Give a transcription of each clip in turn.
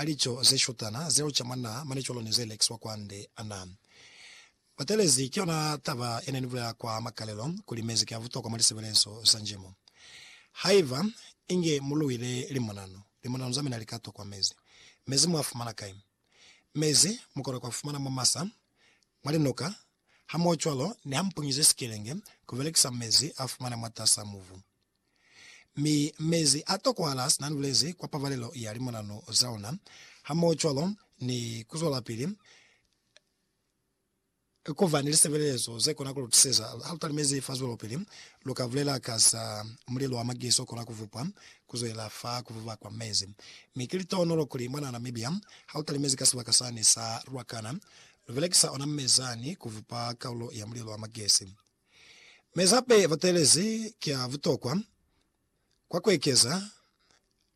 a lico ze shutana zeo ca mwa naa mane cwalo ni ze lekiswa kwa nde a naa batelezi. Ki yona taba ye ne ni bulela kwa makalelo kuli mezi ki a butokwa mwa lisebelezo za njimo. Haiba inge mu luile limonanu, limonanu za mina li ka tokwa mezi. Mezi mu a fumana kai? Mezi mu kona ku a fumana mwa masa, mwa linuka, hamohocwalo ni ha mu punyize sikelenge ku belekisa mezi a fumane mwatas'a mubu. Mi mezi a tokohala sina nulezi kwa pabalelo ya limonanu za ona, hamohocwalo ni kuzwelapili kuba ni lisebelezo zekona kulutuseza halutalimezi fa zwelopili. Luka bulela ka za mulelo wa magezi okona kuvupwa kuzwelela fa kuvuba kwa mezi. Mi ki litohonolo kuli mwana Namibia halutalimezi ka sibaka sani sa Ruacana, lubelekisa ona mezani kuvupa kaulo ya mulelo wa magezi. Mezape batelezi ki a butokwa kwa kuekeza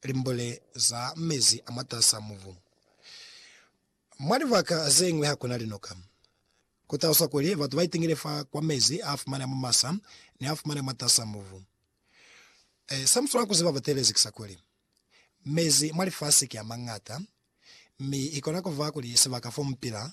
limbule za mezi a mwatas'a mubu. Mwa libaka zeñwi hakuna linoka. Ku taluswa kuli batu ba itingile fa kwa mezi a fumaneha mwa masa ni a fumaneha mwatas'a mubu. Sa mu swanela ku ziba batelezi ki sa kuli, mezi mwa lifasi ki a mañata, mi i kona ku ba kuli sibaka fo mu pila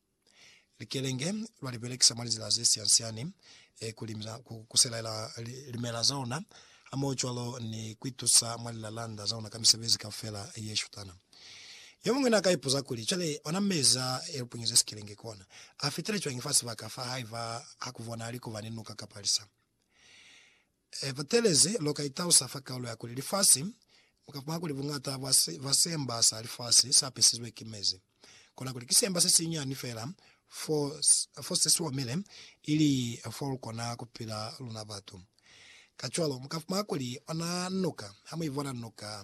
Likelenge lwa li belekisa mwa lizila ze siansiani ku limisa ku kuselaela limela za ona, hamohocwalo ni ku itusa mwa lilalanda za ona ka misebezi kaufela ye shutana. Yomuñwi na ka ipuza kuli, Cwale, ona meza ya lipunyo ze sikelenge kona, a fitile cwañi fa sibaka fa haiba ha ku bonahali kuba ni nuka kapa lisa? He butelezi, lu ka itausa fa kaulo ya kuli lifasi, mu ka fumana kuli buñata bwa si, bwa siemba sa lifasi sa pisizwe ki mezi. Kona kuli ki siemba se sinyani fela fo, fo se si omile, ili fo lu kona ku pila luna batu. Kacwalo, mu ka fumana kuli ona nuka, ha mu i bona nuka,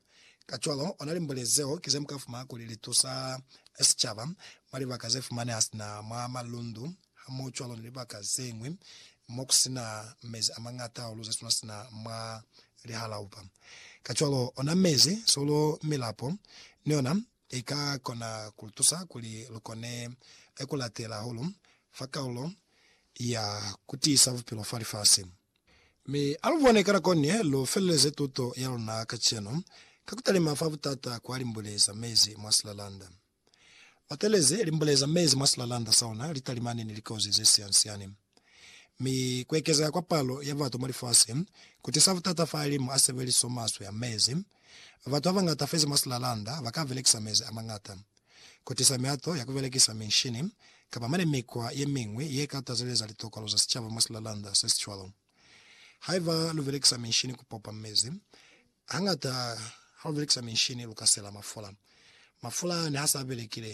Kacwalo, ona limboli zeo ki ze mu ka fumana kuli li tusa sicaba mwa libaka ze fumaneha sina mwa malundu hamohocwalo ni libaka ze ñwi mo ku si na mezi a mañata hahulu ze swana sina mwa lihalaupa. Kacwalo, ona mezi, solo, milapo ni yona i ka kona ku lu tusa kuli lu kone ku latela hahulu fa kalulo ya ku tiisa bupilo fa lifasi. Mi alubone ka nako ni lu feleleze tuto ya luna kacenu ka kutalima fa butata kwa limbule za mezi mwa silalanda. Batelezi limbule za mezi mwa silalanda sa ona litalimani ni likozi ze sian-siani. Mi kuekezeha kwa palo ya batu mwa lifasi kutisa butata fa alimu a sebeliso maswe a mezi, Batu babañata fezi mwa silalanda baka belekisa mezi amañata ku tisa mihato ya ku belekisa minshini kapa mane mikwa yemiñwi ye ka tazeleza litokolo za sicaba mwa silalanda sesicwalo. Haiba lu belekisa minshini ku popa mezi, hañata ha lu belekisa minshini lu ka sela mafula. Mafula niha sa belekile,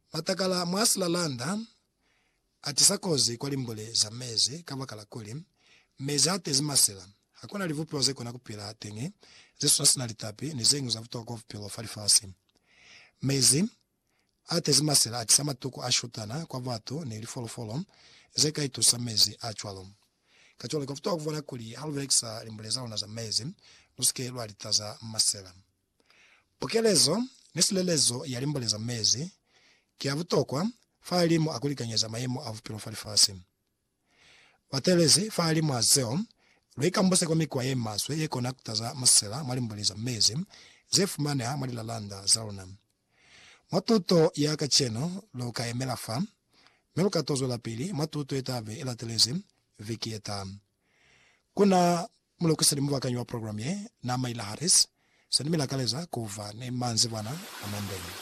Matakala mwa silalanda atisa kozi kwa limbule za mezi kabakala kuli, mezi atezi masila. Hakuna libupiwa zekona kupila teñi zesuna sina litapi ni zeñwi za butokwa kwa bupilo fa lifasi. Mezi atezi masila atisa matuku a shutana kwa batu ni lifolofolo zeka itusa mezi a cwalo. Kacwalo, kwa butokwa kubona kuli halubelekisa limbule zaluna za mezi, lusike lwalitaza masila. Pukelezo ni silelezo ya limbo le za mezi ki ya butokwa fahalimwa a ku likanyeza mayemo a bupilo fa lifasi. Batelezi fahalimwa zeo, lu ikambuse kwa mikwa ye maswe ye kona ku taza masela mwa limbo le za mezi ze fumaneha mwa lilalanda za luna. Mwa tuto ya kacenu, lu ka yemela fa, mi lu ka to zwelapili mwa tuto ye ta be i latelezi viki ye taha. Ku na Mulukisi ni mubakanyi wa program ye, Naama Ila Harris, se ni mi lakaleza ku ba ni manzibwana a mande.